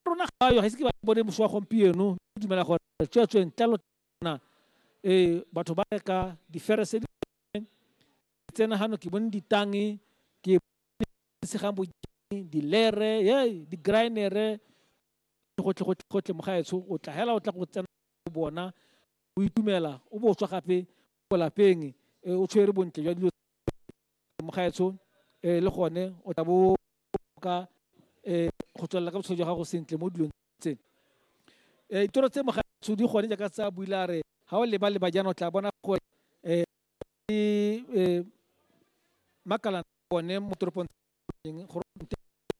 rona ga yo ga ise ke ba bone mošwa gompieno ke dumela gore tsweetsweng tlalo na um batho ba reka diferese di tsena gano ke bone ditange ke segang bojeng dilere ye di-grinere gotlhegotlhegotlhe mogaetsho o tla hela o tla go tsena bona o itumela o bo o tswa gape ko lapeng o tshwere bontle jwa dilo mokgaetsho um le gone o tla bo ka um go tswelela ka botshelo jwa gago sentle mo dilong tse um ditoro tse mogaetsho di gone jaaka tsa buile a re ga o leba leba jaana o tla bona gore um ke um makalana one mo toropong gore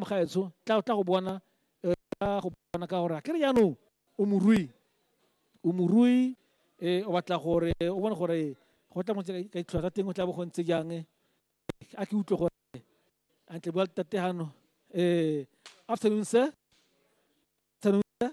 mogaetsho tla tla go bona eh, tla go bona ka gore a kere jaanong o morui o morui eh, o batla gore o bone gore go tla montse ka ditlhwa tsa teng o tla bo go ntse jang eh. a ke utlwe gore antle bua tate gano eh, afternoon sir afternoon sir